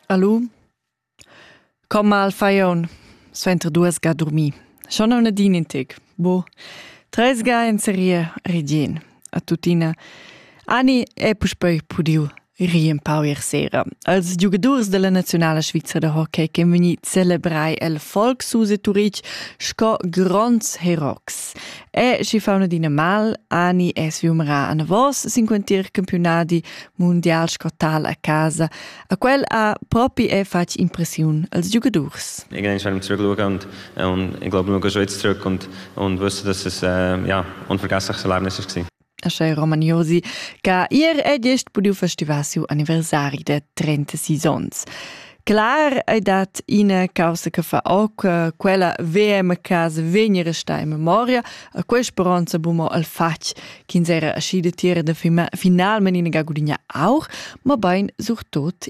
Alu Comma al fajon suenter duas ga dormir. Schon on din in tec. Bu. Tres ga en serie ridien. A tutina. Ani è puspei pudiu rir un pau ier sera. Als giugadurs della nazionala Svizzera de hockey che veni celebrai el Volkshuse Turich sco gronds herox. E schi fa una dina mal, Ani è sviumrà anavos sin quentir campionadi mundial scotal a casa. A quel ha propi è fatg impressiun als giocadurs. Ich bin eigentlich zurück und, und ich glaube, nur ein schönes Stück und, und wusste, dass es äh, ja, unvergessliches Erlebnis war. Asche Roman Josi che ier è gest pudiu festivar siu anniversari da 36 onns. Clar ei dat ina causa che fa oc eh, quella VM casa vegni resta in memoria a quei speronza bumo al fatg ch'ins era aschi de tira de finalmente in ga gudigna auch, ma bein surtot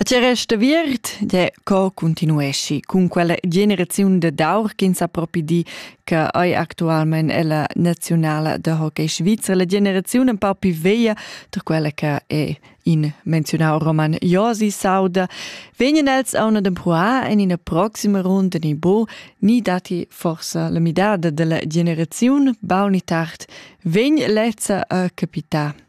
A tgei resta aviert? Gie, co continueschi cun quella generaziun dad aur ch'ins ha propi di che ei actualmein ella naziunala da hockey svizra, la generaziun empau pli veglia da quella che è in menziunau roman Josi s'auda, vegnan els auna d'empruar en ina proxima runda ni bo, ni datti forsa la midada dalla generaziun, baul ni tard vegn lezza a capitar.